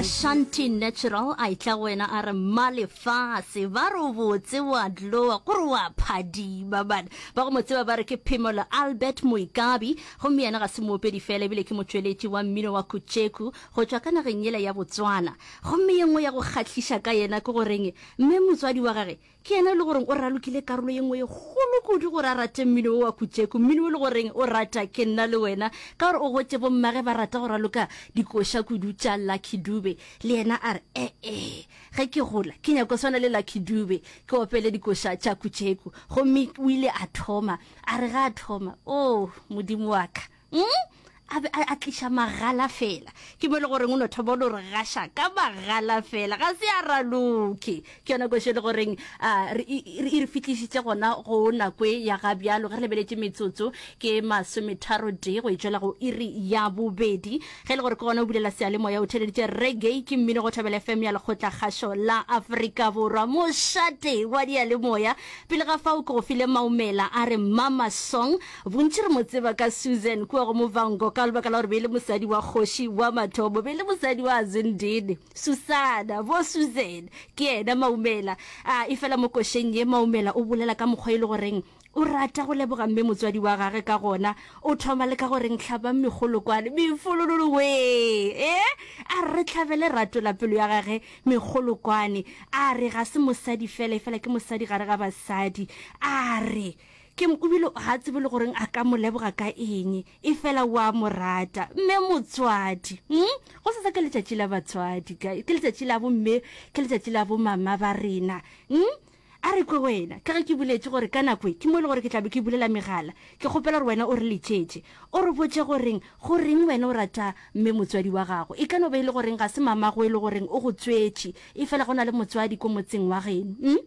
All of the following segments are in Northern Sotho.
Ashanti Natural a itla go wena a re mma lefase ba re o botse wa dlowa gore wa phadima bana ba go mo tseba ba re ke phemolo albert moikabi gomme yena ga se moopedi fela ebile ke motšweletši wa mmino wa kutšeku go tšwa ka nageng yela ya botswana gomme ye nngwe ya go kgahliša ka yena ke goreng mme motswadi wa gage Ke yena yo e le gore o ralokile karolo ye nngwe ye kgolo kudu gore a rate mmino wo wa Kutšeku, mmino wo e le gore o rata ke nna le wena ka gore o gotše bommage ba rata go raloka dikoša kudu tša Lucky Dube. Le yena a re, E-e, ge ke gola ke nyaka go swana le Lucky Dube, ke opele dikoša tša Kutšeku. Gomme o ile a thoma, a re ge a thoma, Oo, Modimo wa ka! mm? a be a tliša magala fela ke mo e le goreng o no thoma o no re gaša ka magala fela ga se a raloke ke yona kwešo e le goreng e re fitlhišitše gona go nakwe ya ga bjalo ge re lebeletše metsotso ke masometharo tee go e tswela go iri ya bobedi ge e le gore ke gona o bulela sealemoya o theleditše reggae ke mmino go thobela fm ya lekgotla kgašo la aforika borwa mošate wa dialemoya pele ga fao ke go file maumela a re mama song Bontši re mo tseba ka Susan kua go Muvhango ka lebaka la gore be e le mosadi wa kgoši wa mathomo, be e le mosadi wa Zindini. Susana, bo Susan, ke yena Maumela. A efela mo košeng ye, Maumela o bolela ka mokgwa e le goreng o rata go leboga mme motswadi wa gage ka gona. O thoma le ka go reng, Hlabang megolo kwano, mefolololo wee! Ee, a re re hlabele Ratola pelo ya gage megolo kwane. A re ga se mosadi fela, efela ke mosadi gare ga basadi. A re. Kim o bile a tsebe le goreng a ka mo leboga ka eng, e fela o a mo rata. Mme motswadi, mm? go se sa ke letšatši la batswadi, guys. Ke letšatši la bomme, ke letšatši la bomama ba rena. Mm? A re kwe wena, ka ge ke buletše gore ka nako e, ke mo e le gore ke tla be ke bulela megala, ke kgopela gore wena o re letšetše, o re botše goreng goreng wena o rata mme motswadi wa gago. E ka no ba e le goreng ga se mamago e le goreng o go tswetše, e fela go na le motswadi ko motseng wa geno. Mm?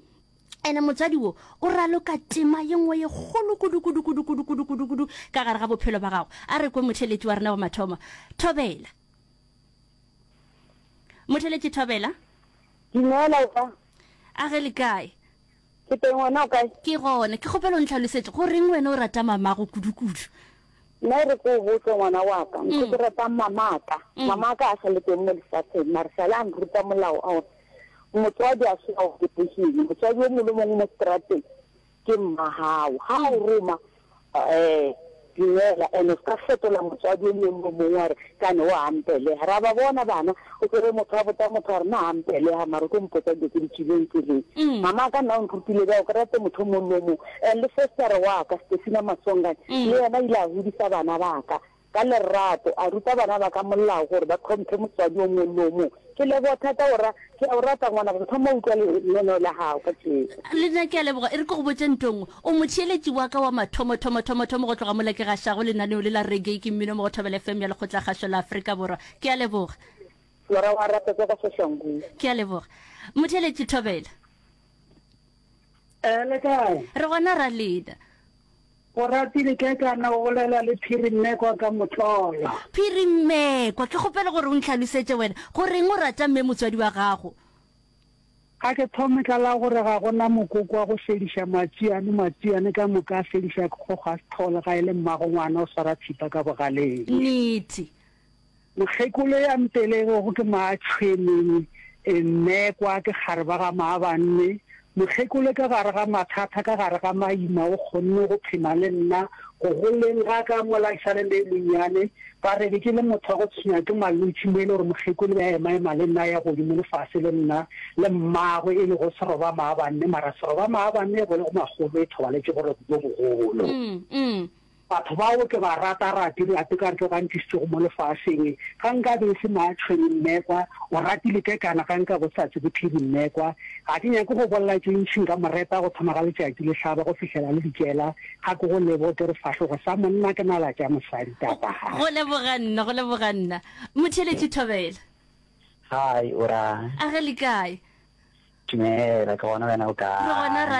ene motswadi wo o raloka tema ye nngwe ye kgolo kudu-kudu-kudu-kudu-kudu-kudu-kudu ka gare ga bophelo ba gago a re kwe motheletši wa rena wa mathomo thobela motheletši thobela dumela opa a ge le kae ke teng wena o kae ke gone ke kgopelo ntlhalosetše go reng wena o rata mamago kudu-kudu Nna e re ke o botse ngwana wa ka, ntho ke ratang mamaka. Mamaka a sa le teng mo lefatsheng, mare sa le a nruta molao a gore motswadi a se ao ketegile. Motswadi o mongwe le mongwe mo strateng ke mma gago. Ga o roma um dumela, and-e o se ka fetola motswadi o mongwe le o mongwe wa re Ka ne o a mpelega. Ra ba bona bana, o tsere motho a botsa motho a re, Na a mpelega? Mara o tlo mpotsa dilo tse di tswileng tseleng. Mama a ka nna o nrutile bjao ke rate motho mong le o mong. And le fostere wa ka, Stefina Masongane, le yena o ile a godisa bana ba ka ka lerato, a ruta bana ba ka molao gore ba tlhomphe motswadi o mongwe le o mongwe. Ke leboga thata go ra. Ke a go rata ngwana go thoma utlwa lenaneo la gago ka tšeko. Le nna ke a leboga. E re ke go botše nto nngwe. O motheeletši wa ka wa mathomothomothomothomo go tloga mola ke gašago lenaneo le la Reggae ke Mmino mo go Thobela FM ya Lekgotlakgašo la Afrika Borwa. Ke a leboga. Lora wa rata tsa kwa Soshanguve. Ke a leboga. Motheeletši Thobela. Eh, le kae? Re gona ra lena. Oratile Kekana o bolela le Phiri Mmekwa ka motlolo. Phiri Mmekwa, ke kgopela gore o ntlhalosetše wena, goreng o rata mme motswadi wa gago? A ke thome ka la gore ga go na mokoko wa go fediša Matšiane. Matšiane ka moka a fedišwa ke kgogo a se thole ga e le mmagongwana o swara thipa ka bogaleng. Nnete. Mokgekolo ya mpelegego ke Maatshweneng, mme kwa ke gare ba ga Maabanne. Mokgekolo ka gare ga mathata, ka gare ga maima o kgonne go phema le nna. Go goleng ga ka mola ke sa le le monnyane, ba re be ke le motho wa go tshwenywa ke malwetši mo e le gore Mokgekolo be a emaema le nna a ya godimo le fase le nna le mmagwe e lego Seroba Maabanne. Mara Seroba Maabanne e bolego magolo e thobaletše boroko bjo bogolo. Batho bao ke ba rata rate re a teka re tlo ka ntlišitšego mo lefaseng ga nka be e se maatšhwene mmekwa o ratile ke kana ga nka go sa tse ke phedi mmekwa ga ke nyake go bolela tše ntšhi nka mo reta go thoma ga letšatši le hlaba go fihlela le dikela ga ke go lebo ke re sefahlogo sa monna ke nala tša mosadi tapa ga Go leboga nna, go leboga nna. Motheeletši Thobela, Hi, o ra? a re le kae? Dumela, ke gona wena o Re gona kae? ra